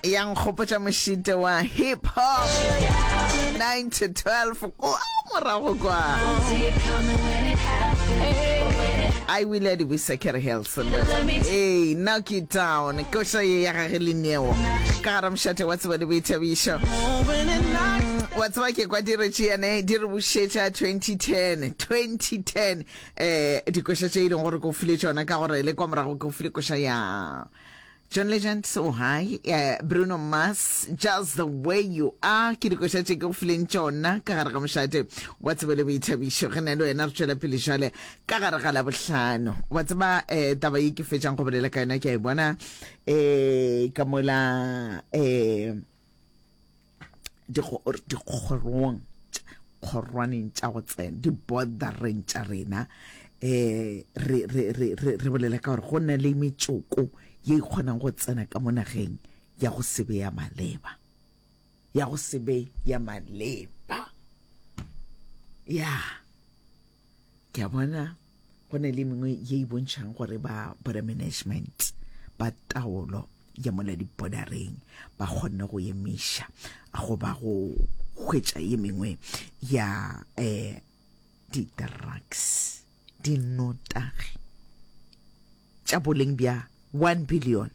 ya nkgopotša mošite wa hip hop 9 to 12 kwa morago kwa I will let you secure Helson. Hey, knock it down. Koša ye ya gage le neo. Ka gara mošate wa tseba le boithabišo. Wa tseba ke kwa diretši yane di re bušetša 2010. 2010. Eh, dikoša tše e leng gore ko file tšona ka gore le kwa morago ko file koša ya John Legend so high, uh, Bruno Mars, just the way you are. Ke dikoša tše ke go fileng tšona ka gare ga mošate wa tsebo le boithabišo. Re na le wena re tšwela pele jale ka gare ga la bohlano. Wa tseba eh, taba ye ke fetšang go bolela ka yona ke a e bona eh, ka mola eh, dikgorong kgorwaneng tša go tsena di bordereng tša rena eh re re re re re bolela ka gore go na le metsoko ye e kgonang go tsena ka mo nageng ya go se be ya maleba ya go se be ya maleba ya yeah. ke a bona go ne le mengwe ye e bontšhang gore ba border management ba taolo ya mola dibodareng ba kgonne go emiša goba go hwetša ye mengwe ya um di-drugs dinotagi tša boleng bja one billion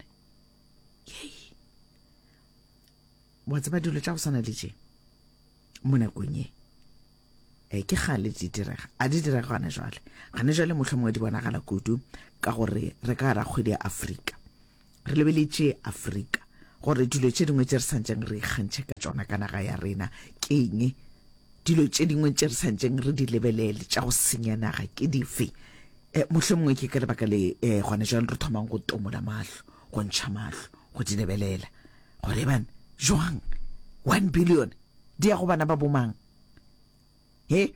yei wa tseba dilo tša go swana le tše mo nakong e e ke gale di direga a di direga gane jwale gane jwale motlho mongwe di bonagala kudu ka gore re ka gara kgwedi ya afrika re lebeletše afrika gore dilo tše dingwe tše re santšeng re ikgantšhe ka tsona ka naga ya rena ke eng dilo tše dingwe tše re santšeng re di lebelele tša go senya naga ke dife um motlho mongwe ke ka lebaka le um gone jalo re thomang go tomola mahlo go ntšha mahlo go di lebelela gore ban jwang one billion di ya go bana ba bomang he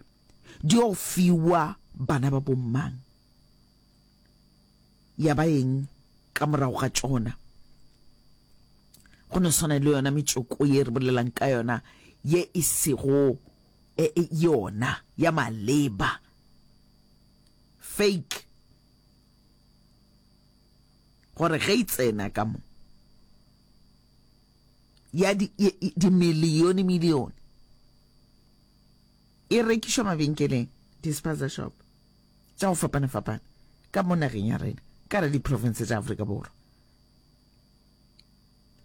di yo fiwa bana ba bomang ya ba eng ka morago ga tsona go no swana le yona metsoko ye re bolelang ka yona ye e sego e, e, yona ya maleba fake gore ge e tsena ka mo ya dimilione milione e rekišwa mabenkeleng dispenser shop tša go fapana-fapana ka mo nageng ya rena ka re diprovince tša Afrika Borwa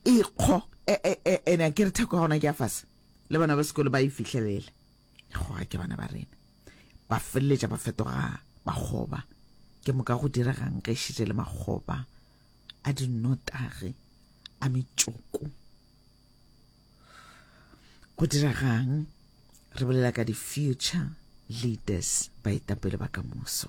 e kgo e, e, e, ena ke re theko ya gona ke ya fase le bana ba sekolo ba e fihlelela goga ke bana ba rena ba feleletša ba fetoga bakgoba ke moka go diregang ge šitše le makgoba a dinotagi a metšoko go diregang re bolela ka di-future leaders baetapele ba kamoso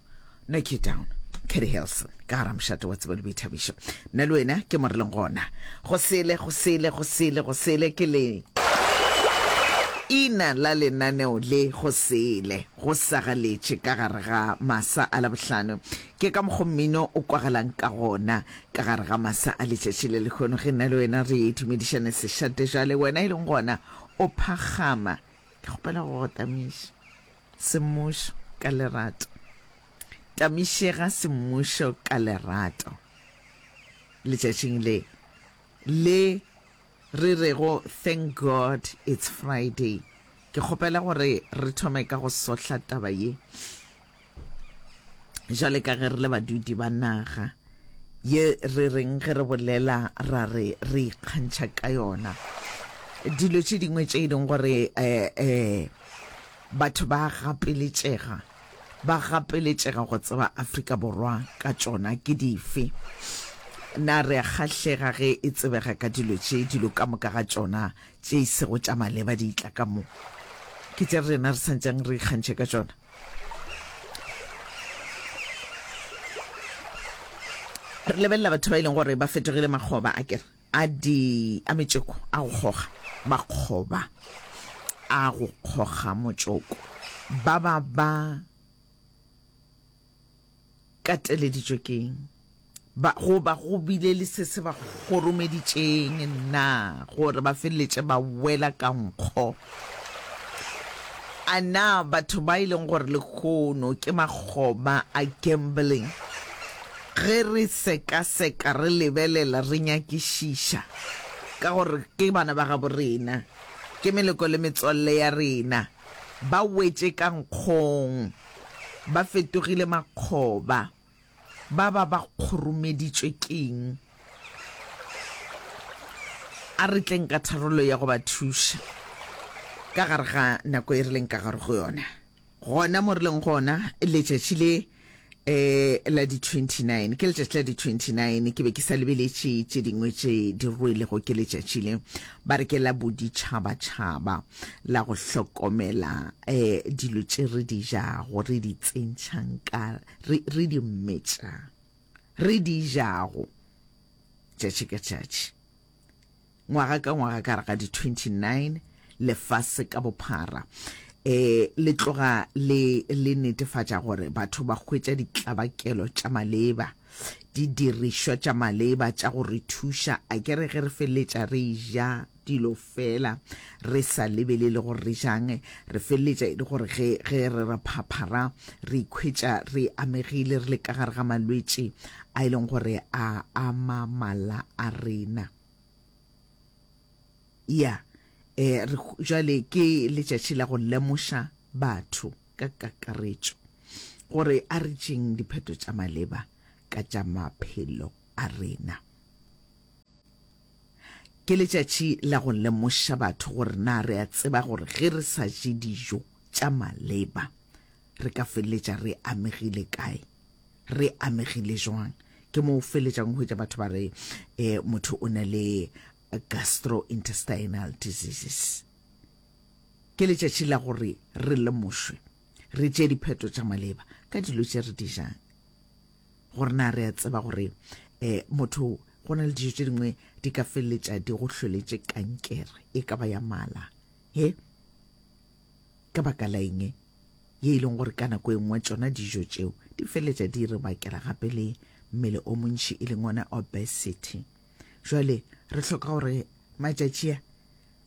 no ke down Kedi Hilson ka gara mošate wa tsebo le boithabišo nna le wena ke more leng gona go sele go sele go sele go sele ke le ina la lenaneo le go sele go sagaletše ka gare ga masa a labohlano ke ka mokgo mmino o kwagalang ka gona ka gare ga masa a letšatši le lekgono ge nna le wena re dumedišane sešate jale wena e leng gona o phagama ke kgopela go go tamiša Semmušo ka lerato. Tamišega semmušo ka lerato letšatšing le le re rego Thank God It's Friday. Ke kgopela gore re thome ka go sohla taba ye jwale ka ge re le badudi ba naga. Ye re reng ge re bolela ra re re ikgantšha ka yona? Dilo tše dingwe tše e leng gore um batho ba gapeletšega ba gapeletšega go tseba Afrika Borwa ka tšona ke dife? Na re a kgahlega ge e tsebega ka dilo tše dilo ka moka ga tšona tše e sego tša maleba di tla ka mo? Ke tše rena re sa ntseng re ikgantšhe ka tšona. re lebelela batho ba e leng gore ba fetogile makgoba a kere a di a metseko a go kgoga makgoba a go kgoga motsoko ba ba ba kateleditšwe ke eng? Ba, goba go bile le se se ba kgoromeditšeng na gore ba feleletše ba wela ka nkgo? A na batho ba e leng gore lehono ke makgoba a gambling, ge re sekaseka, re lebelela, re nyakišiša ka gore ke bana ba gabo rena, ke meleko le metswalle ya rena, ba wetše ka nkgong? Ba fetogile makgoba. Ba ba ba kgoromeditšwe keng? A re tleng ka tharollo ya go ba thuša ka gare ga nako e re leng ka gare go yona, gona mo re leng gona letšatši le eh la di 29 ke letšatši la di 29 ke be ke sa lebeletše tše dingwe tše di rwelego ke letšatši le ba re ke la boditšhabatšhaba la go hlokomela um dilo tše re di jago re di tsentšhang ka re, re di mmetša re di jago tšatši ka tšatši ngwaga ka ngwaga ka re ga di-29 lefase ka bophara eh le tloga le le netefatša gore batho ba hwetša ditlabakelo tša maleba di dirišwa tša maleba tša go re thuša a ke re ge re feleletša re ja dilo fela re sa lebelele gore re jang re feleletša e le gore ge ge re ra phaphara re ikhwetša re amegile re le ka gare ga malwetši a e leng gore a ama mala a rena ya eh jale ke letšatši la go lemoša batho ka kakaretšo gore a re tšeng dipheto tša maleba ka tša maphelo a rena Ke letšatši la go lemoša batho gore na re a tseba gore ge re sa je dijo tša maleba re ka feleletša re amegile kae, re amegile jwang. Ke mo o feleletšang o hwetša batho ba re eh, motho o na le gastrointestinal diseases. Ke letšatši la gore re lemošwe, re tše dipheto tša maleba ka dilo tše re di jang. gore na re a tseba gore um motho go na le dijo tše dingwe di ka feleletša di go hloletše kankere e ka ba ya mala he ka baka la eng ye e leng gore ka nako e nngwe tsona dijo tšeo di feleletša di re bakela gape le mmele o montši e leng ona obesity jale re hloka gore matšatši a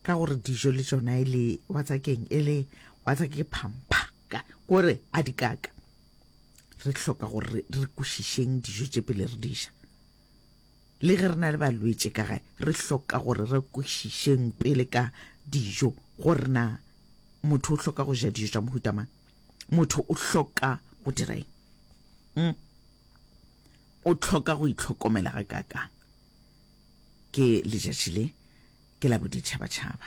ka gore dijo le tsona e le watsakeng e le watsake phampha kore a dikaka re hloka gore re kwešišeng dijo tše pele re di ja le ge re na le balwetše ka gae re hloka gore re kwešišeng pele ka dijo gore na motho o hloka go ja dijo tša mohuta mang motho o hloka go dira eng hmm? o hloka go itlhokomela ga kakang ke letšatši le ke la boditšhabatšhaba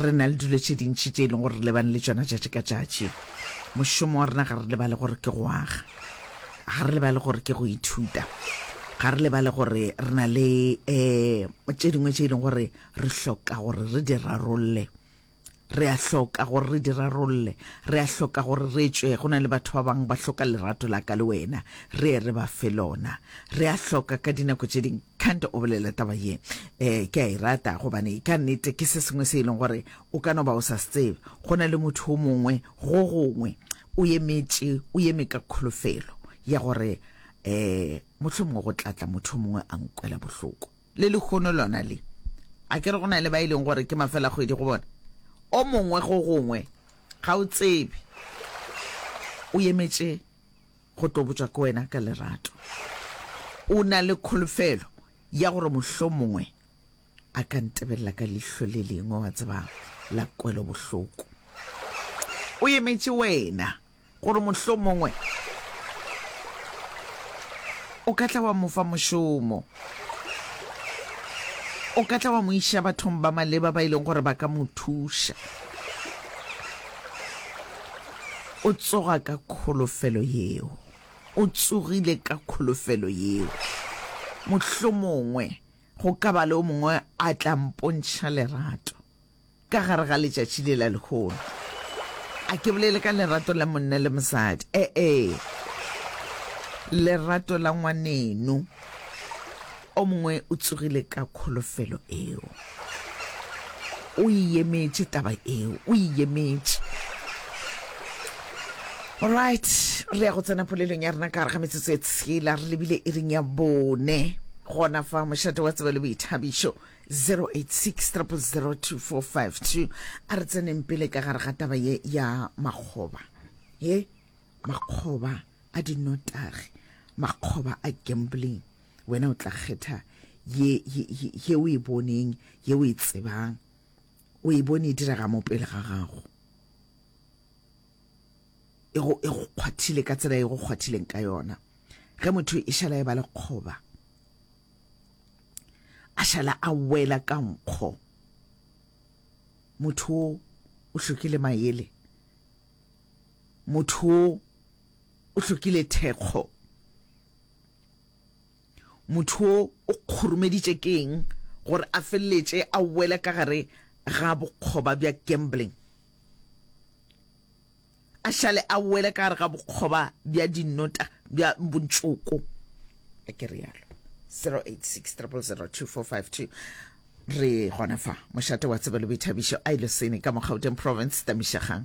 Re na le dilo tše dintši tše e leng gore re lebane le tšona tšatši ka tšatši. Mošomo wa rena ga re lebale gore ke go aga, ga re lebale gore ke go ithuta, ga re lebale gore re na le um tše dingwe tše e leng gore re hloka gore re di rarolle re a hloka gore re di rarolle re a hloka gore re tšwe go na le batho ba bangwe ba hloka lerato la ka le wena re ye re ba fe lona re a hloka ka dinako tše dingwe Kant o bolela taba ye eh ke a e rata gobane ka nnete ke se sengwe se e leng gore o ka no ba o sa se tsebe go na le motho o mongwe go gongwe o emetše o eme ka kholofelo ya gore eh motlho mongwe go tlatla motho mongwe a nkwela bohloko le lekgono lona le a ke re go na le ba e leng gore ke mafela kgwedi go bona o mongwe go gongwe ga o tsebe o emetše go tlo botša ko wena ka lerato. O na le kholofelo ya gore mohlomongwe a ka ntebelela ka lihlo le lengwe, wa tseba, la kwelobohloko. O emetše wena gore mohlomongwe o ka tla wa mo fa mošomo, o ka tla wa mo iša bathong ba maleba ba e leng gore ba ka mo thuša. O tsoga ka kholofelo yeo. O tsogile ka kholofelo yeo. Mohlomongwe go ka ba le o mongwe a tla mpontšha lerato ka gare ga letšatši le la lehono. A ke bolele ka lerato la monna le mosadi. E-e. Lerato la ngwaneno. O mongwe o tsogile ka kholofelo eo. O e yemetše taba eo, o e yemetše. Alright, re ya go tsena polelong ya rena ka gare ga metsotso e tshela re lebile e reng ya bone gona fa mošate wa tsebe le boithabišo 0860002452 a re tseneng pele ka gare ga taba ye ya makgoba ye makgoba a dinotagi makgoba a gambling Wena o tla kgetha ye, ye, ye, ye o e boneng, ye o e tsebang. O e bone e direga mo pele ga gago. E go, e go kgwathile ka tsela e go kgwathileng ka yona. Ge motho e šala e ba lekgoba, a šala a wela ka nkgo motho o o hlokile maele motho o o hlokile thekgo Motho wo o kgoromeditše ke eng gore a feleletše a wele ka gare ga bokgoba bja gambling, a šale a wele ka gare ga bokgoba bja dinota bja bontšoko? A ke realo. 086 000 2452 re gona fa mošate wa tsebelo boithabišo a ilosene ka mo gauteng province tamišegang.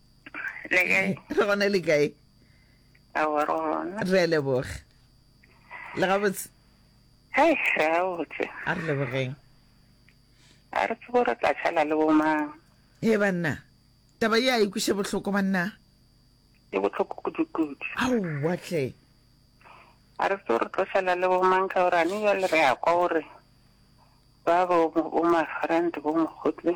le kae re gona le kae awa re gona re a leboga le gabotse hei re gabotse a re lebogeng a re tsebo re tla tšhala le bomang e banna taba ye a ikwiše bohloko banna e bohloko kudu-kudu aowa tle a re tsebo re tlo tšhala le bomang ka gore ane jale re ya kwa gore ba bo bo mafrant bo mokgotle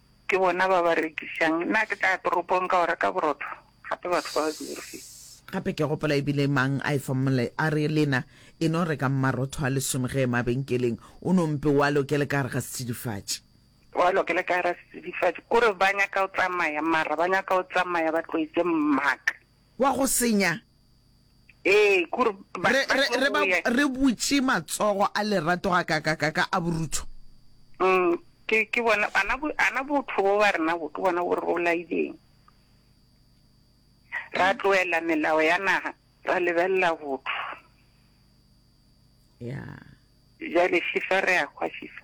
Ke bona ba ba rekišang. Na ke tla ya toropong ka o reka borotho? Gape batho ba ba diyurfi. Gape ke gopola e bile mang a efa molao a re, Lena e no rekang marotho a lesome ge e mabenkeleng, o no mpe o a lokele ka gare ga setsidifatši. O a lokele ka gare ga setsidifatši. Ke gore ba nyaka o tsamaya, mara ba nyaka o tsamaya ba tloetše mmaka. Wa go senya. Ee, k'ore ba, Re, ba re, tlo re, ba, go ya. re butše matsogo a lerato gakakakaka a borutho. Mm, ke, ke bona, ana, bo- ana botho bo ba rena bo, ke bona bo re bolaileng. Ra tloela melao ya naga, ra lebelela botho. Ya. Bjale Shifa re a hwa Shifa.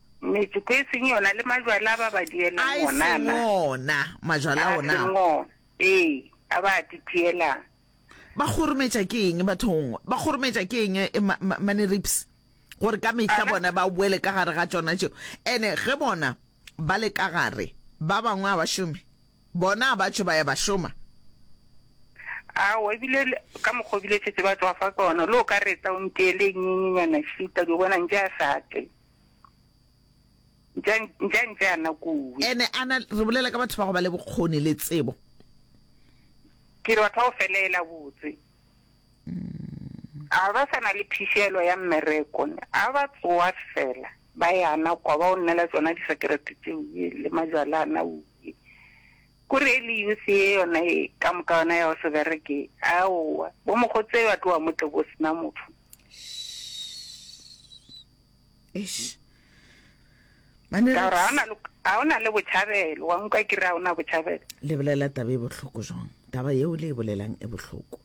Metsoko e seng yona le majwala a ba ba dielang A e wona seng na? ona majwala A ao na? seng ona, ee, a ba a titielang. Ba kgorometša ke eng bathong? Ba kgorometša ke eng eh, ma- ma- mane rips? Gore ka mehla Ana- bona ba boele ka gare ga tšona tšeo. Ene ge bona ba le ka gare, ba bangwe a ba šome. Bona ba tšho ba ya ba šoma. Aowa, ebile le- ka mokgwa o bile šetse ba tswafa ka ona, le o ka reta o ntee le e nyenyenyana šita, di o bona ntše a sa tle. Ntle, ntle, ntle a na kuwi. Ene a na, re bolela ka batho ba go ba le bokgoni le tsebo. Ke re batho ba go feleela botse. A ba sa na le phišelo ya mmereko, a ba tsoa fela, ba ya na kwa, ba o nnela tsona disakerete tseo ye, le majwala a na uwi. Ko re e le youth ye yona ye, ka moka yona ya go se bereke, aowa. Bo mokgotse ba tloa mo tle bo se na motho. eish Mane ka gore ga o na le botšhabelo wa nkwa kere ga o na botšhabelo le bolela taba e bohloko jwang taba yeo le e bolelang e bohloko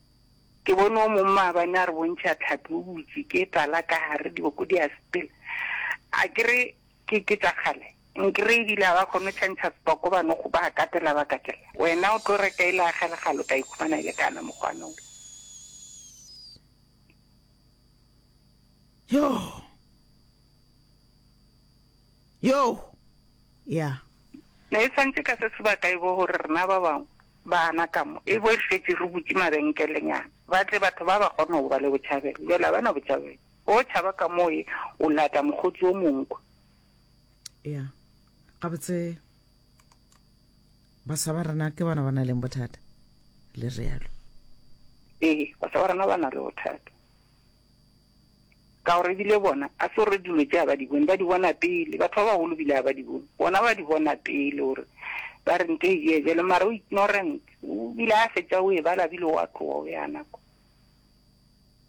ke bone o mongwe maabane a re bontšha tlhapi o butse ke tala ka gare diboko di a sepela a kere ke ke tsa kgale nkere ebile ga ba kgone go tšhantšha sepoko ba no go ba katela ba katela wena o tlo reka ile a galegalo ka ikhumana e le kana mokgwanolo Yoh! Yoh! Ya. Ne e swantše ka se sebaka e bo gore rena ba bangwe baana ka mo, e bo re šetše re butše mabenkelenyana, ba tle batho ba ba kgone go ba le botšhabelo. Bjale ga ba na botšhabelo. O tšhaba ka mo e o lata mokgotsi o mongwe kwa. Ya. Gabotse, baswa ba rena ke bona ba na leng bothata, le realo. Ee, baswa ba rena ba na le bothata. Ka gore ebile bona, a se gore dilo tše ga ba di bone, ba di bona pele. Batho ba bagolo ebile ga ba di bone, bona ba di bona pele gore ba re nto e bea bjalo. Mara o ignorant, o bile a fetša o e bala bile o a tloga o ya nako.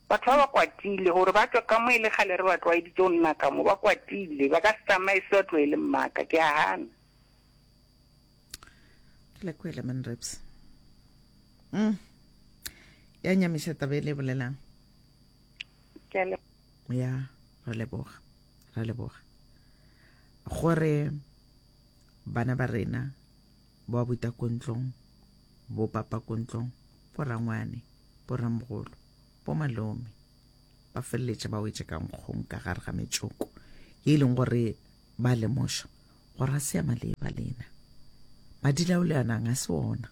Batho ba ba kwatile gore ba tšwa ka mo e le kgale re ba tlwaeditse go nna ka mo, ba kwatile. Ba ka se tsamaye se ba tloele mmaka, ke a gana. la kwele man reps mm. ya nyamiša taba e le bolelang ya re leboga re leboga gore bana ba rena ba buta kontlong bo papa kontlong bo rangwane bo ramogolo bo malome ba feleletše ba wetse ka nkgong ka gare ga metsoko e leng gore Ba lemoša gore a se a maleba lena. Madi la o le anang a se ona.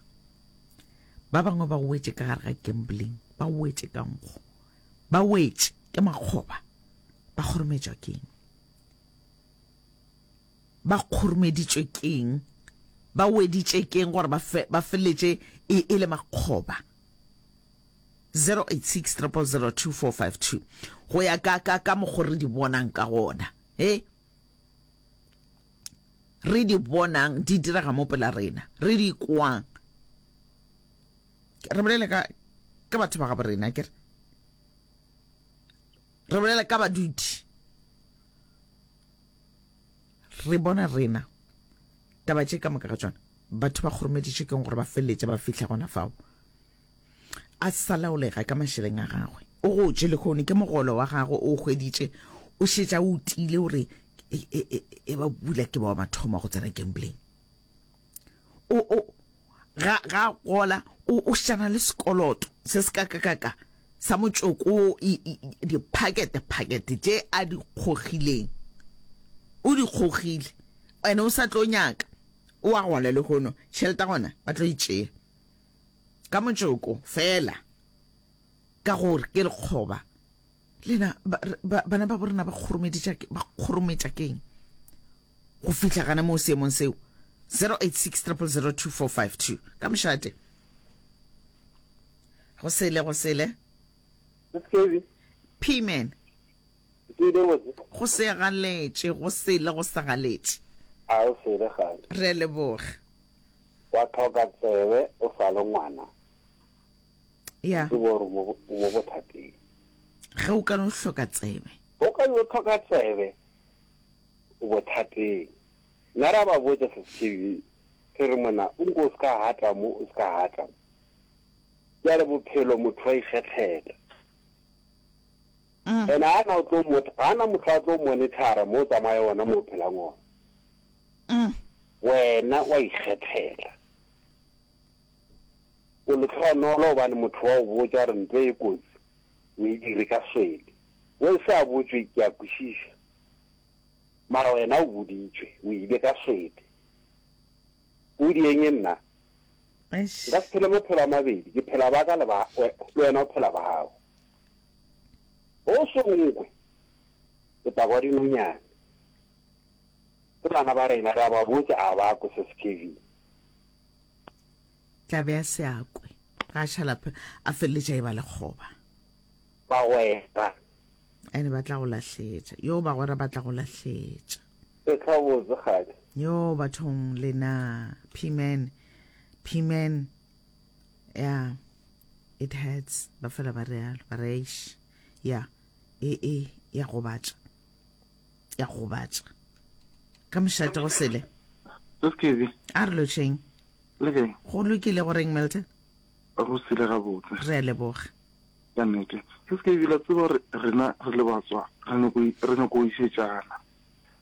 Ba bangwe ba wetše ka gare ga gambling, ba wetše ka nkgo, ba wetše ke makgoba, ba kgorometšwa keng? Ba kgoromeditšwe keng? Ba weditše keng gore ba fe, ba feletše e, e le makgoba? 086 0002452 go ya ka ka ka mokgo re di bonang ka gona. he re di bonang di direga mo pela rena re di kwang re bolela ka ka batho ba gabo rena kere re bolela ka baduti re bona rena taba tše ka moka ga tsona batho ba kgoromeditše keng gore ba feleletše ba fitlha gona fao a sa laolega ka mašeleng a gagwe o gotše lekgone ke mogolo wa gagwe o hweditše o šetša o tile o re e, e, e, e ba bula ke ba wa mathomo go tsena gambleng o o ga ga gola o o shana le sekoloto se se ka ka ka ka sa motsoko diphakete phakete tše a di kgogileng o di kgogile ene o sa tlo nyaka o a gola le gono tšhelete gona ba tlo e tšea ka motšoko fela ka gore ke lekgoba lena bana ba borena ba kgorometša keng go fihla gana moo seemong seo 0860002452 ka mošate go sele go sele pman go segaletše go sele go segaletše re leboga Wa tlhoka tsebe o sa le ngwana. Ya. Ke bo re mo mo bothateng. Ge o ka no hloka tsebe. O ka no tlhoka tsebe o bothateng. Nna ra ba botša se sešebi se re mona o nko o se ka hata mo o se ka hata mo. Bjale bophelo motho wa ikgethela. And ga na o tlo motho, ga na motho a tlo monithara mo o tsamaya ona mo o phelang ona. Wena wa ikgethela. O letlhonolo obane motho wa o botsa gore ntlo e kotsi o e dire ka swele. O e sa botswe ke a kwishisha. Mara wena o boditswe o ile ka swele. O di eng nna? Nka se phele maphelo a mabedi, ke phela ba ka le ba le wena o phela ba gago. Go sengwe, setago wa dinonyane. Ge bana ba rena re a ba botša, a ba kwe se se Kevin. Tla be a se a kwe. Ga Šalaphe a feleletša e ba lekgoba. Bagwera. Ene ba tla go lahletša. Yoo, bagwera ba tla go lahletša. Ke tla botse kgale. Yoo, bathong lena. P-man. P-man. Yeah, it hurts. Ba fela ba realo, ba re eish. Yeah, e e ya gobatša. Ya gobatša. Ka mošate go sele. Skv. A re lotšeng. Le kae? Go lokile go reng Milton? Go sile ga botse. Re a leboga. Ka nnete. Skv la tseba gore rena re le batswa re nyako re nyako isetšana.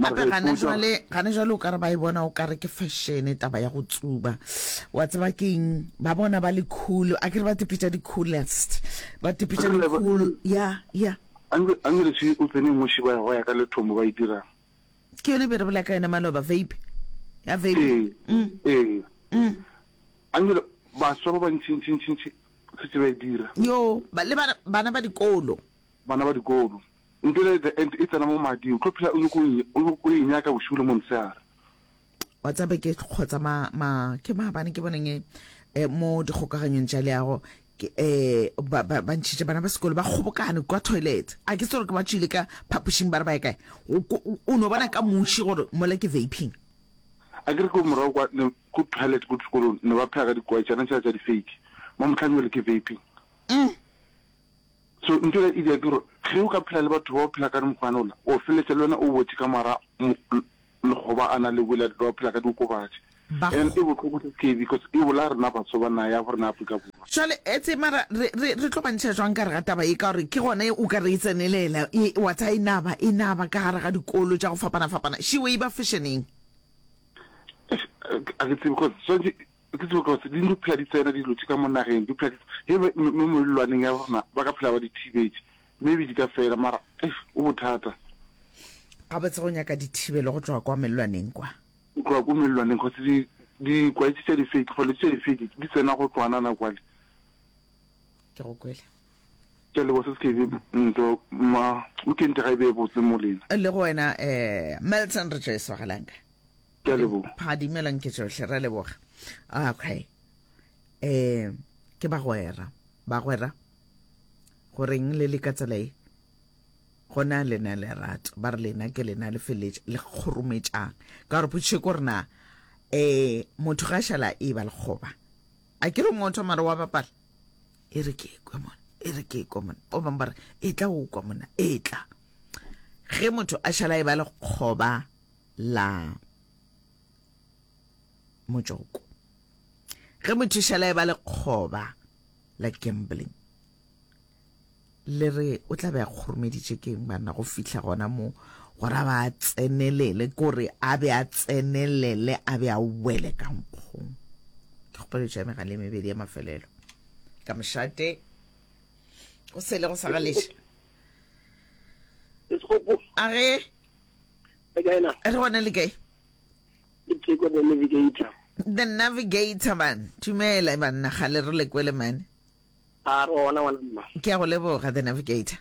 gape gane jale gane jale o kare ba e bona o kare ke fashion taba ya go tsuba wa tseba keng ba bona ba le cool a kere ba tepetša di coolest ba tepetša di cool ya ya angele se o tsene ngoši ba go ya ka lethomo ba e dira ke yone be re bola ka yone maloba vape ya vape ee mm. ee mm. angele baswa ba bantšintšintšintši se tse ba e dira yo le bana ba dikolo bana ba dikolo Until at the end e tsena mo mading, o tlo phela o nyoko o nyoko o e nyaka bošigo le montshehare. Wa tsaba ke kgotsa ma ma ke maabane ke boneng eh, mo dikgokaganyong tša leago ke eh ba ba ba ntšhitše bana ba sekolo ba kgobokane kwa toilet a ke tsere ke ba tšwile ka phapošing ba re ba ye kae O- ko- o o no bona ka muši gore mola ke vaping A ke re ko morago kwa ne ko toilet ko sekolong ne ba phega ka dikwaetšana tša tša di-fake. Mo motlhanyole ke vaping. So ntho ela idia ke gore ge o ka phela le batho bao phela ka mokgwana ola, o feletša le wena o wetše ka mara lekgoba ana le wela ba phela ka diokobatši. And e bohloko se se because e bolaya rena baswa ba naha ya borena Afrika Borwa. Jwale etse mara re re re tlo bantšha jwang ka re ga taba e ka gore ke gona o ka re e tsenelela e wa tsa e naba e naba ka gare ga dikolo tša go fapana fapana she way ba fashion-eng. A ke tsebe because swantše Ke tsebe gore tse ding di phela di tsena dilo tše ka mo nageng, di phela di he mo melelwaneng ya rona ba ka phela ba di thibetše, maybe di ka fela mara eish go bothata. Gabotse go nyaka dithibelo go tloga kwa melelwaneng kwa? Go tloga ko melelwaneng cause di dikwaetši tša difeiki, bolwetši tša difeiki di tsena go tloga nana kwale. Ke go kwele. Ke a leboga se se ke be ntho ma weekend ga e be e botse mo lena. Le go wena eh Milton re tšo e swagelang ka. ke a leboga pha dumela nke tsohle ra leboga okay eh ke bagwera bagwera goreng le le ka tsela e gona lena lerato ba re lena ke lena le feletse le kgorometšang ka gore potšiše ko rena um motho ga šala e ba lekgoba a ke re motho mare wa bapala e re ke ekwe mona e re ke ekwe mona o bangwe ba re e tla o kwa mona e tla ge motho a šala e ba lekgoba la motšoko. Ge mothuša la e ba lekgoba la gambling, le re o tla be a kgoromeditše keng banna go fihla gona mo gore a ba a tsenelele kore a be a tsenelele a be a wele ka nkgong ke kgopeletša megale e mebedi ya mafelelo ka mošate go sele go sa galeša a ge le kae na re gona le kae ke teko the navigator the navigator man tumela banna ga le re le kwele mane a re gona ngwana mma ke a go leboga the navigator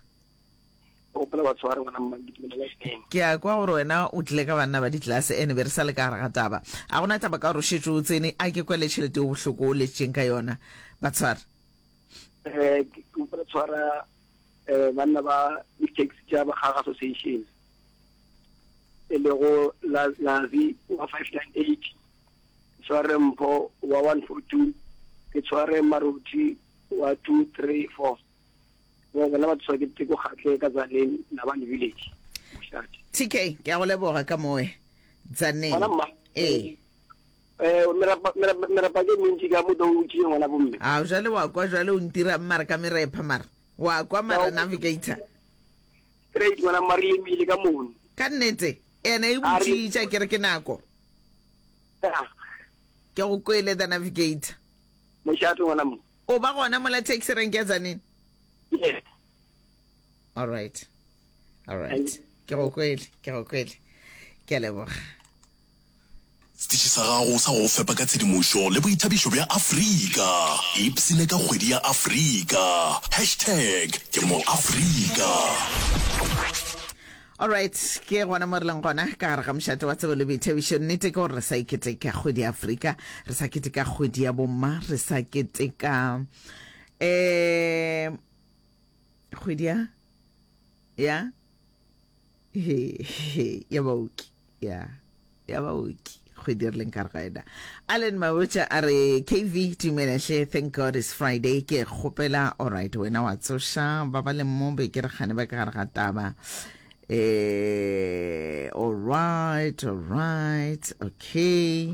o pela batho ba re ngwana mma ke tumela last time ke a kwa gore wena o tle ka banna ba ditlase ene be re sa le ka gare ga taba a gona taba ka gore o šetse o tsene a ke kwele tšhelete o bohloko o letšeng ka yona batshware eh ke tshwara um banna ba di-taxi tša Bakgaga Association e lego Lazi wa 598 tshware mpho wa 142 ke tshware maruthi wa 234 mo bona ba tswa ke teko kgatle ka zaneng la ba village moshate tk ke a go leboga ka moe zaneng ee Ee, merepa, merepa, merepa ke mentši ka moka o tšee ngwana bomme. Ao, jwale wa kwa, jwale o ntirang mare ka merepa mare? Wa kwa mara navigator? Straight ngwana mma, re lemile ka mono. Ka nnete? Ena e botšitša ke re ke nako. Ya. Ke go kwele the navigator. Mošate ngwana mma. O ba gona mola taxi rank ya Tzaneen? Yes. All right. All right. Ke go kwele, ke go kwele. Ke a leboga. Setiši sa gago sa go go fepa ka tshedimošo le boithabišo bja Afrika. Ipsine ka kgwedi ya Afrika. Hashtag ke moAfrika. Alright, ke gona mo re leng gona ka gare ga mošate wa tsebo le boithabišo. Nnete ke gore re sa e keteka kgwedi ya Afrika, re sa keteka kgwedi ya bomma, re sa keteka um kgwedi ya ya ya baoki ya ya baoki kgwedi re leng ka rena allen mabotša a re kv tumelehle thank god is friday ke kgopela alright wena wa tsoša ba ba leng mo be ke re kgane ba ka gare ga taba um alright alright okay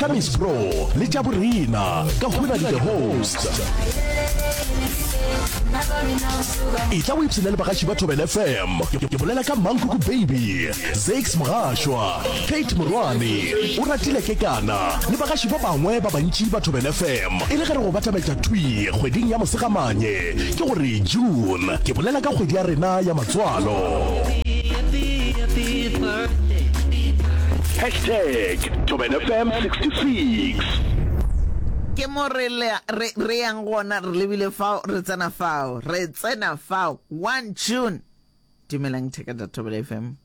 ka miss bro le tša borena ka hwena di the host e tla o ipsene le bagaši ba thobel fm ke bolela ka mankoko baby zax mogashwa kate morwane o ratile ke kana le bagaši ba bangwe ba bantši ba thobel fm e le ge re go batametša thwi kgweding ya mosegamanye ke gore june ke bolela ka kgwedi ya rena ya matswalo Hashtag Tobin FM 66. ke mo re le- re- re yang gona re lebile fao re tsena fao re tsena fao one june dumelang theka tša thobela fm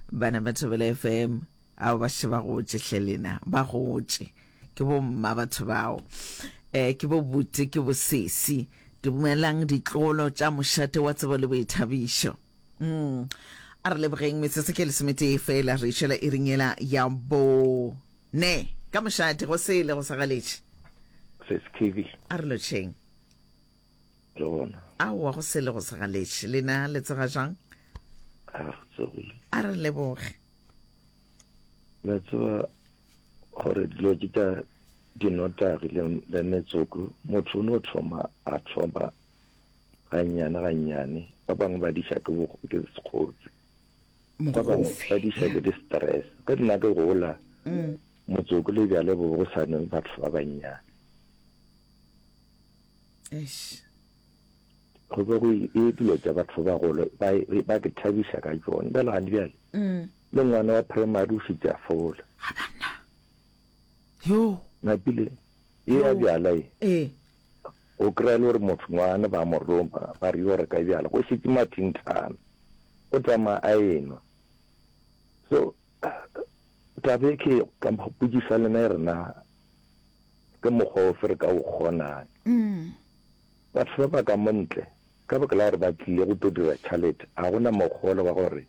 bana ba thobela fm ao ba še ba gotše hle lena ba gotše ke bomma batho bao um ke bo bute ke bosesi dumelang ditlolo tša mošate wa tsebo le boithabišo Mm. A re lebogeng metsotso ke lesometee fela re išela e ringela ya bone ka mošate go sele go sagaletše seskv a re lotšheng ke gona aowa go sele go sagaletše lena le tsega jang a re tsogile a re leboge la tseba gore dilo ke ka dinotagi le metsoko motho o no thoma a thoma Gannyane gannyane, ba bangwe ba diša ke sekgotse, ba bangwe ba diša ke di-stress. Ge nna ke gola, mm. motsoko le bjale bo go sa nwe batho ba bannyane. go be go e dilo tša batho ba golo ba ke thabiša ka tsone bjale gane bjale mm. le ngwana wa primary o šitša fola yo napile Ye ya bjala ye. Ee. O kry-a le gore motho ngwane ba mo roma ba re yo reka bjala go šetse mathinthana o tsamaya a enwa so tabe ke ka mpotšiša lena e rena ke mokgwa o fe re ka o kgonang mm. batho ba ba ka montle ka baka la gore ba tlile go to dira tšhalete ga gona mokgolo wa gore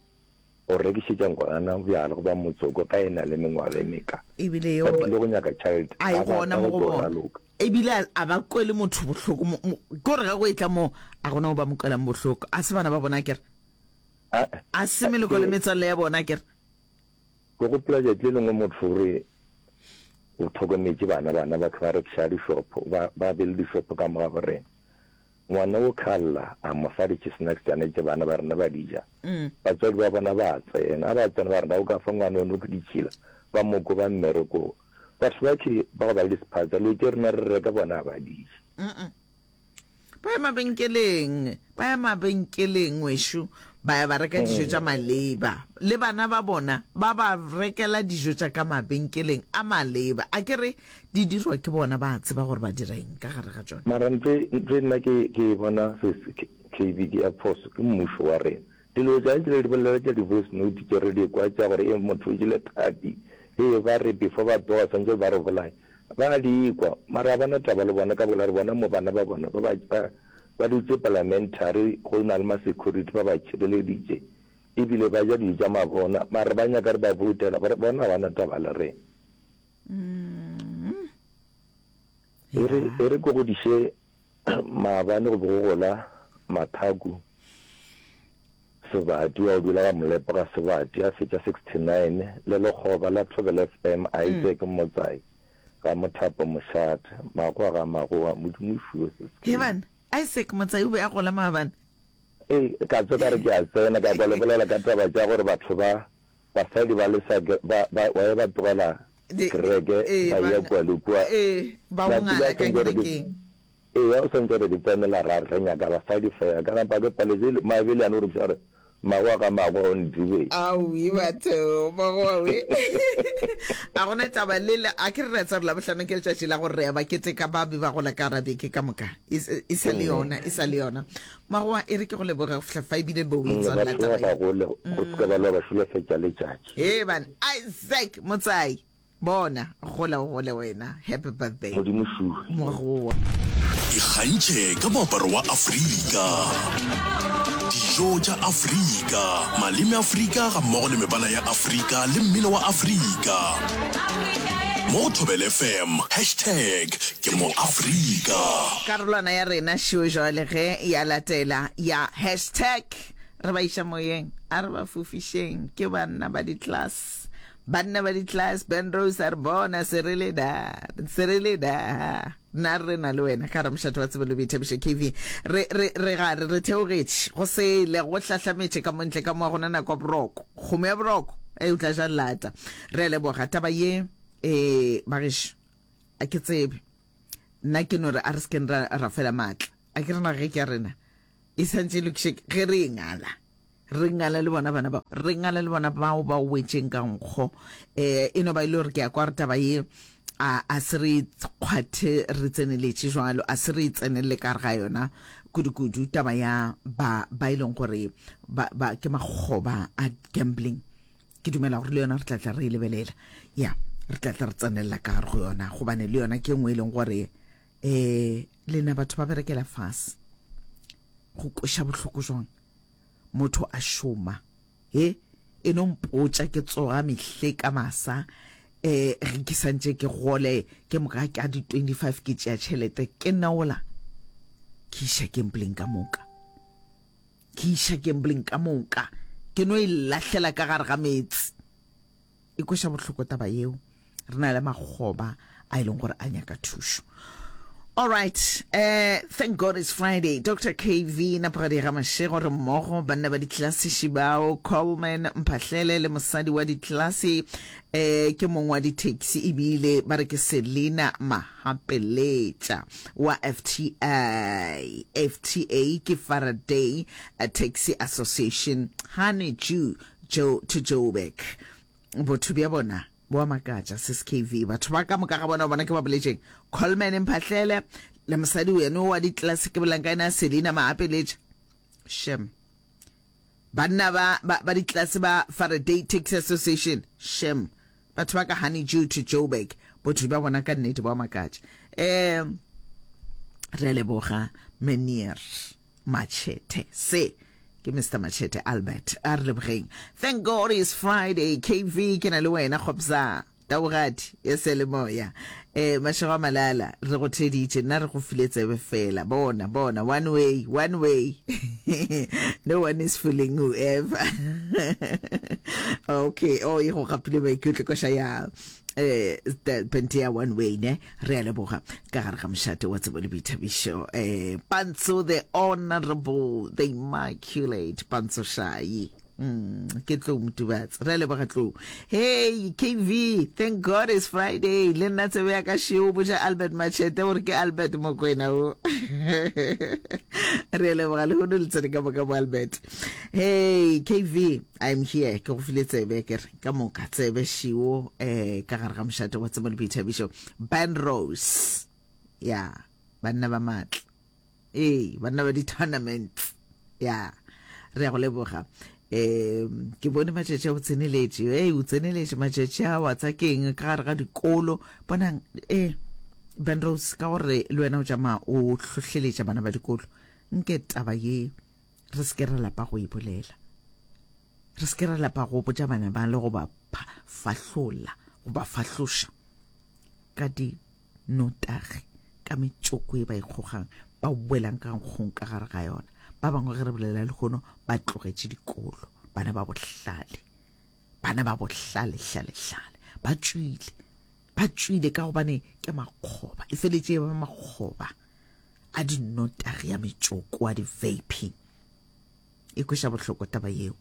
go rekišetša ngwana bjala goba motsoko ge e na le mengwaga e meka. E bile yeo a e gona mo go bona, e bile a ba kwele motho bohloko. Ke gore ge go e tla moo, a gona mo ba mo kwelang bohloko. A se bana ba bona akere? A se meloko le metswalle ya bona akere? Ke gopola tšatši le lengwe motho o re o tlhokometše bana, bana batho ba rekiša dishopho, ba be le dishopho ka morago rena. Ngwana o khalla, a mo fa di-chsnacks tša ne tše bana ba rena ba di ja. Batswadi ba bona ba tsena. Ha ba tsena ba re, Na o ka fa ngwana yono ditšhila? Ba mo koba mmerekong. Batho ba tšhi ba go ba le disephatsa, leo tše rena re reka bona ha ba di je. Ba ya mabenkeleng, ba ya mabenkeleng, ngwešo, ba ya ba reka dijo tša maleba. Le bana ba bona ba ba rekela dijo tša ka mabenkeleng a maleba. A ke re? Di dirwa ke bona, ba a tseba gore ba dira eng ka gare ga tšona. Mara ntho e nna ke e bona KB ke ya phoso ke mmušo wa rena. Dilo tša jele di bolela tša di voice note tše re di kwa tša gore hee motho o jele thathi, hee ba re before ba tsoga swantšwe ba re bolaye. Ba a di kwa mara ga ba na taba le bona ka baka la gore bona mo bana ba bona ba ba dutše parliamentary go na le ma security ba ba tšhireleditše e bile ba ja dijo tša mabona mara ba nyaka re ba voutela bona ga ba na taba le rena. Mm. e re Yeah. e re ko go diše maabane go be go gola mathaku sebati wa o dula ga molepo ga sebati a fetša 69 le lekgoba la thobela fm a itse ke motsai ga mothapo mošate magoa ga magoa modimo o fiwe se se he bana isaac motsai o be a gola maabane ee ka tso ka re ke a tsena ka kwa le bolela ka taba tša gore batho ba Basadi ba le sa ke ba ba ba ye ba tlogela Di, kereke ee, ba ba ya nga- kua le kua. ee, ba Ba bongala tseba ka sentse gore ke- kerekeng. Eya o sentse gore ke tsenela ra re nyaka basadi fela. Ka napa ke paletse le- Maebele a no re botšiša gore magwa ka magwa o ntibe. Aowi batho ba go we. A gona taba le le a ke re re tsa re labohlano ke letšatši la gore re ya ba keteka ba be ba gola ka rabeke ka moka. E s- e sa le yona, e sa le yona. Magoa, Ere ke go leboge go fihla fa ebile bo o Mongwe ba itswalela taba tloga ye. go le go tloga ba lwa ba šulefatša letšatši. Hee bana, Isaac Motsai, bona, gola o gole wena. Happy birthday, Modimo šuwe. Magoa. Ikgantšhe ka moaparo wa Afrika, dijo tša Afrika, maleme a Afrika gammogo le mebala ya Afrika le mmino wa Afrika mo go Thobel FM, hashtag Ke mo Afrika. Karolwana ya rena šo jwale ge ya latela ya hashtag re ba iša moyeng a re ba fofišeng ke banna ba di-class banna ba di-class ben rose a re bona se re le da se re le da nna re na le wena ka ramošate wa tsebelo boithabišo kv re re re ga re re theogetše go sele go hlahlametše ka montle ka moa gona nako ya boroko kgomo ya boroko e o tla ja lata re a leboga taba ye eh bagešo a ke tsebe nna ke no re a re sekeng ra ra fela maatla a ke rena ge ke ya rena e santse e lokiše ge re e ngala re ngala le bona bana bao re ngala le bona bao ba wetšeng ka nkgo um e no ba e le gore ke ya kwa re taba ye a a se re kgwathe re tseneletše jalo a se re tsenelele ka re ga yona kudu-kudu taba ya ba ba e leng gore ba, ba ke makgoba a gambling ke dumela gore le yona re tlatla re e lebelela ya re tlatla re tsenelela ka gare go yona gobane le yona ke nngwe e leng gore um lena batho ba berekela fase go kweša bohloko jwang motho a šoma e e no mpotša ke tsoga mehle ka masa um re ke santse ke gole ke moka ka di-25 ke tšea tšhelete ke naola ke iša kempleng ka moka Ke iša gambling ka moka, ke no e lahlela ka gare ga meetse. E kweša bohloko taba yeo, re na le makgoba a e leng gore a nyaka thušo. All right, uh, thank God it's Friday. Dr. KV Napagadi Gamashego re mmogo banna ba ditlelasiši bao Coleman Mphahlele le mosadi wa ditlelasi eh, ke mong wa ditaxi ebile ba re ke Selina Maha Gapeletša wa FTA, FTA ke Faraday Taxi Association, ganetšu Joe to Joburg. Botho bja bona bo a makatša, sskv. Batho ba ka moka ga bona, bona ke ba boletšeng, Coleman Mphahlele le mosadi weno wa ditlelase ke bolankaina Selina Mahapeletša. Shem. Banna ba, ba, ba ditlelase ba Faraday Taxi Association, shem, batho ba ka Honeydew to Joburg, botho bja bona ka nnete ba makatša. Um, re a leboga Menier Machete. Se, ke mr machete albert a re lebogeng thank god is friday kv ke na le wena kgopsa Taugati e se le moya. E, mašego a malala, re go theditše, nna re go file tsebe fela. Bona, bona, one way, one way. no one is fooling whoever. okay, oh, e go gapile maikutlo koša ya eh pente ya one way ne re a leboga ka gare ga mošate wa tsebo le boithabišo eh pantso the honorable the immaculate pantso shayi Mm, ke tlou motubatse re a leboga tlou hey kv thank god is friday le nna tsebe ya ka sheo boja albert machete gore ke albert mokwena o re a leboga le gone le tsene ka moka bo albert hey kv i'm here ke go file tsebe ke re ka moka tsebe sheo eh ka gare ga mošate wa tsebo le boithabišo ban rose ya yeah, banna ba maatla ee banna ba di-tournament ya re ya go leboga um ke bone matšatši a go tseneletše e o tseneletše matšatši a wa tsa keng ka gare ga dikolo bonang e benrose ka gore le wena o tšama o hlohleletša bana ba dikolo nke taba ye re se ke ra lapa go e bolela re se ke ra lapa go botša bana ba le go ba fahlolla go ba fahloša ka di notagi ka metšoko ye ba e kgogang, ba boelang ka nkgong ka gare ga yona. Ba bangwe ge re bolela lehono ba tlogetše dikolo, bana ba bohlale, bana ba bohlale, hlale, hlale, ba tšwile, ba tšwile ka gobane ke makgoba, e feletše e ba makgoba a dinotagi, a metšoko, a di-vaping. e kweša bohloko taba yeo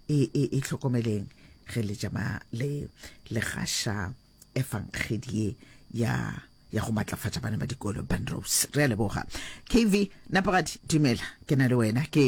e, e, e hlokomeleng ge le jama le le gaša efangedi ye ya ya go matlafatša bana ba dikolo banrose re a leboga kv napagadi dumela ke na le wena ke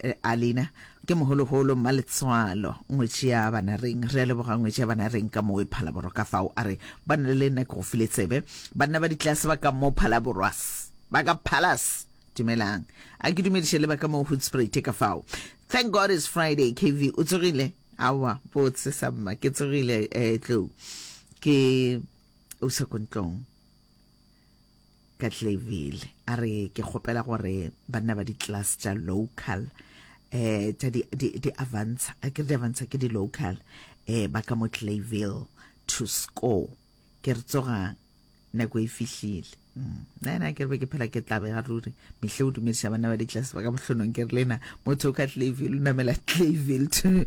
eh, alina ke mogologolo mmaletswalo ngwetši ya bana reng re a leboga ngwetši ya bana reng ka moo e phalaborwa ka fao a re ba na le nna ke go file tsebe banna ba ditlase ba ka moo phalaborwas ba ka phalas Dumelang. A ke dumediše le ba ka mo Hoedspruit ka fao. Thank God it's Friday. KV o tsogile? Awa, botse sa mma. Ke tsogile eh tlou. Ke o sa kontlong. Ka tlevile. A re ke kgopela gore banna ba di class tša local eh tša di di di avantsha. A ke di avantsha ke di local eh ba ka mo Clayville to score ke re tsogang nako e fihlile nna ke re be ke phela ke tlabega ruri mehle o dumediša bana ba ditlase ba ka mohlonong ke re le na motho o ka tlaville o namela tlaville to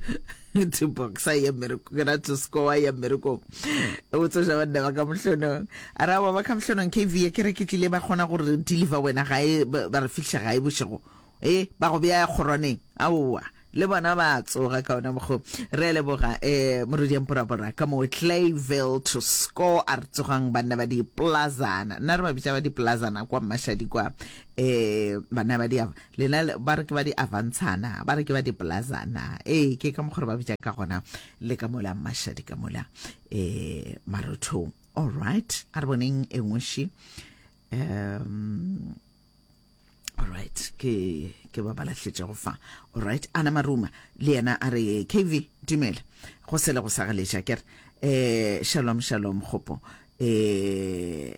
to boxa ya mmereko ke ra to score ya mmerekong o tsoša banna ba ka mohlonong a ra wa ba ka mohlonong kv ke re ke tlile ba kgona gore deliver wena gae ba re fitlha gae bošego Ee, ba go bea kgorwaneng. Aowa, le bona ba a tsoga ka ona mokgo. Re a leboga, eh, Morwedi Emporabora, ka moo Clayville to score a re tsogang banna ba diplazana. Nna re ba bitša ba diplazana kwa Mashadi kwa, eh, banna ba di, lena ba re ke ba diavantshana, ba re ke ba diplazana. Ee, ke ka mokgo re ba bitša ka gona le ka mola Mashadi ka mola, eh, marothong. All right, a re boneng e nngwe še. Um, right ke ke ba balahletša go fa right ana maruma le yena a re kv dumela go sele go sagaleša kere eh shalom shalom gopo eh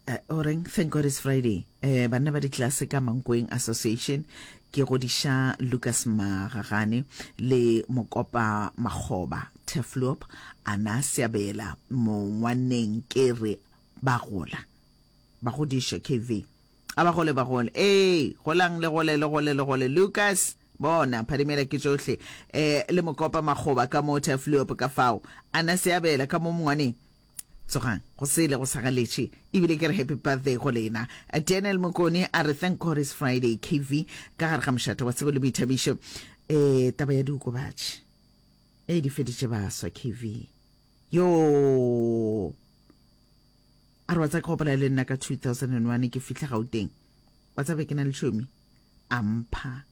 uh, oreng thank god it's friday eh banna ba ditlase ka mankweng association Ke godiša Lukas Magagane le Mokopa Makgoba, Tefloop a na seabela mongwanneng ke re ba gola ba godišwe KV a ba gole ba gole ee golang le gole le gole le gole Lukas bona phadimela ke tšohle eh le Mokopa Makgoba ka mo Tefloop ka fao a na seabela ka mo mongwaneng Tsogang go sele go sa galetše ebile ke re happy birthday go lena. Daniel Mokoni a re thank God it's Friday KV ka gare ga mošate wa tsebo le boithabišo. E, taba ya diokobatši e di feditše baswa KV. Yoo! A re wa tsa ke gopola le nna ka 2001 ke fihla Gauteng. Wa tsa be ke na le tšhomi a mpha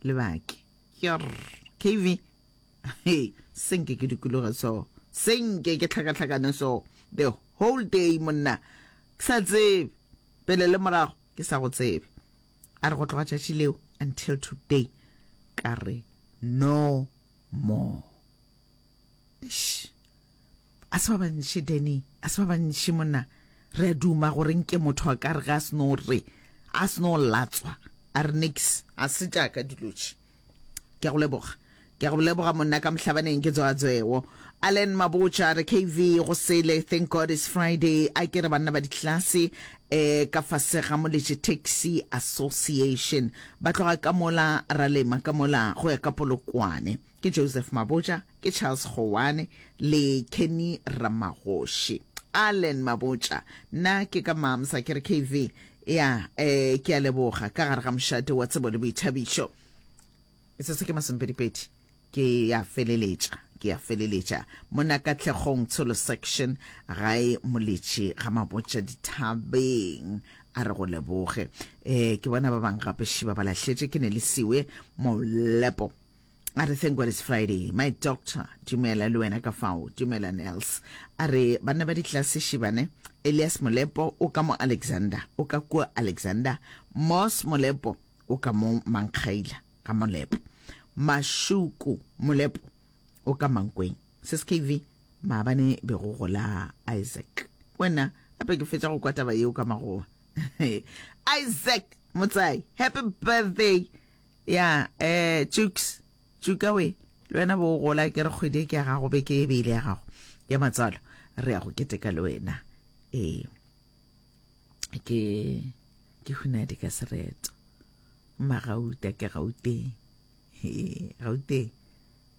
lebake. Yerr! KV. hey se nke ke dikologe so se nke ke tlhakatlhakane so the whole day monna ke sa tsebe pele le morago ke sa go tsebe a re go tloga tšatši leo until today ka re no more Eish. a se ba bantši danny a se ba bantši monna re a duma gore nke motho a ka re ga a seno re a seno latswa a re nix a se jaaka dilotši Ke a go leboga. Ke a go leboga monna ka mohlabaneng ke tsoa tsoeo. Allen Mabotja re KV go sele thank God is Friday a ke re banna ba ditlase eh ka fase ga Moletše Taxi Association ba tloga ka mola ra lema ka mola go ya ka Polokwane. Ke Joseph Mabotja. Ke Charles Goane le Kenny Ramagoši. Allen Mabotša, Nna ke ka Moms, a ke re KV? Ya, eh, ke a leboga, ka gare ga mošate wa tsebo le boithabišo. Metsotso ke masomepedipedi, ke ya feleletša, ke ya feleletša. Monna Katlhegong Tsholo Section, gae Moletši ga Mabotša dithabeng, a re go leboge. Eh, ke bona ba bang gape šiba ba lahletše, ke ne le siwe Molepo. A re, Thank God it's Friday. My doctor, dumela le wena ka fao, dumela Nels. A re, banna ba ditlase šibane, Elias Molepo o ka mo Alexander, o ka kua Alexander, Moss Molepo o ka mo Mankgaila, ga Molepo. Mashuku Molepo o ka Mankweng. SSKV, maabane be go gola Isaac. Wena, gape ke fetša go kwa taba yeo ka magoa. Isaac, motsai, happy birthday. Ya, eh, Tšuks, Tšuka we, le wena bo o gola ke re kgwedi e ke ya gago, beke e be ile ya gago ya matswalo, re ya go keteka le wena. Ee, ke, ke hunadi ka sereto. Mma gauta ke gauteng. Gauteng.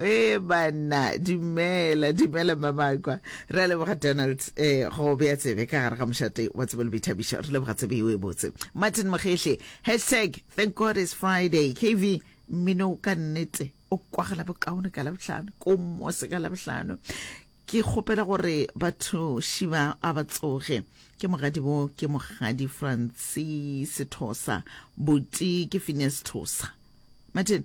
Ee banna, dumela, dumela Mma Makwa. Re a leboga Donald eh go bea tsebe ka gare ga mošate wa tsebe le boithabišo. Re leboga tsebe eo e botse. Martin Mogehle, hashtag thank God it's Friday. KV, mmino ka nnete o kwagala bokaone ka labohlano, ko mose ka labohlano. Ke kgopela gore batho šiba a ba tsoge. Ke mogadi bo ke mogadi Francis Thosa, boti ke Phineas Thosa. Martin,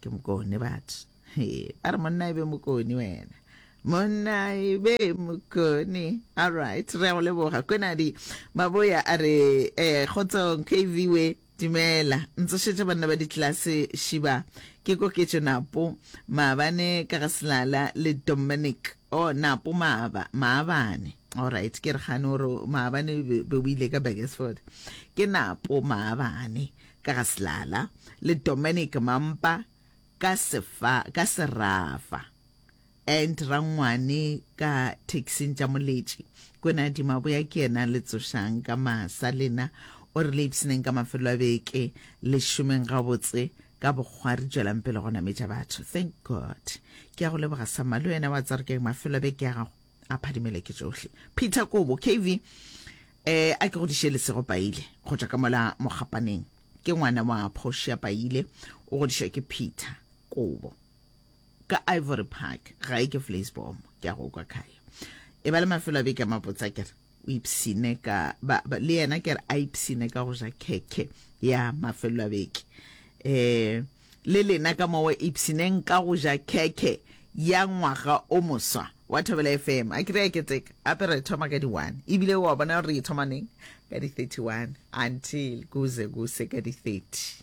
ke mokone batho ba re monna e be mokone wena monna e be mokone alright re ya go leboga konadi maboya a re um kgotsong kv we dumela ntsošetša banna ba ditlelase šiba ke koketšo napo maabane ka ga selala le dominic o oh, napo maaba maabane alright ke re gane gore maabane be o ile ka bakersford ke napo maabane ka ga Silala le Dominic Mampa ka sefa ka serafa and Rangwane ka taxing tša moletši kwena Dimaboya ke yena le tsošang ka masa lena o re le ipsineng ka mafelo a beke le šomeng gabotse ka bokgwari tšwelang pele go nametša batho thank god ke ya go leboga sama le wena wa tsarkeng mafelo a beke ya gago a phadimele ke tsohle peter kobo kv eh a ke go diše lesego paile go tša ka mola mogapaneng ke ngwana wa portia paile o godišwa ke peter kobo ka ivory park ga e ke flasbom ke a go kwa kaya e ba le mafelo a beke a mabotsa kere o ipshine ka ba, ba, le yena ke re a ipshine ka go ja khekhe ya mafelelo a beke um le lena ka mowa ipshineng ka go ja khekhe ya ngwaga o moswa wa thobela fm a kry-a keteka gape re thoma ka di-one ebile wa bona gore re e thoma neng ka di-thirty-one until kuze kuse ka di-thirty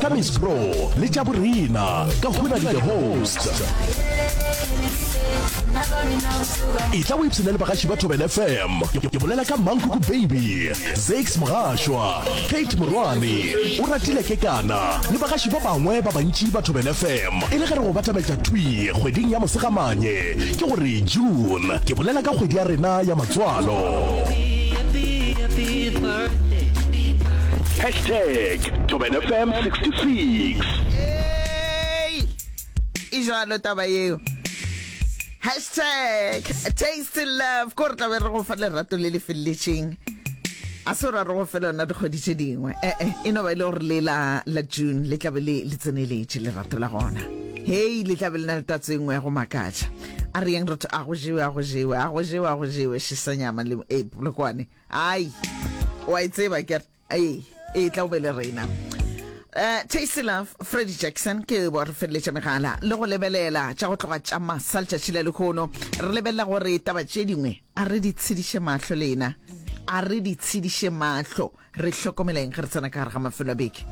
ka miss bro le tša borena ka hona le the host e tla websena le bagaši ba tobel fm ke bolela ka mankuku baby zax mogašwa kate morwane o ratile ke kana le bagaši ba bangwe ba bantši ba tobel fm e le ge re go batametša twi kgweding ya mosegamanye ke gore june ke bolela ka kgwedi ya rena ya matswalo Hashtag Thobela FM 66. Hey! E jalo taba eo. Hashtag taste love. Ko re tla be re go fa lerato le le felletšeng. A se ra re go fela yona dikgwedi tše dingwe. Eh eh, e no ba e le gore le la la June le tla be le le tseneletše lerato la gona. Hey, le tla be le na le tatso e nngwe ya go makatša. A re yeng re tho- a go jewe, a go jewe, a go jewe, a go jewe, šisanyama le e polokwane. ai wa e tseba ke ai e tla o be le rena Uh, tasty love freddy jackson ke bo re feleletša megala le go lebelela tša go tloga tša masa letšatši la lekgono re lebelela gore taba tše dingwe a re di tshediše mahlo lena a re di tshediše mahlo re hlokomeleng ge re tsena ka gare ga mafelo a beke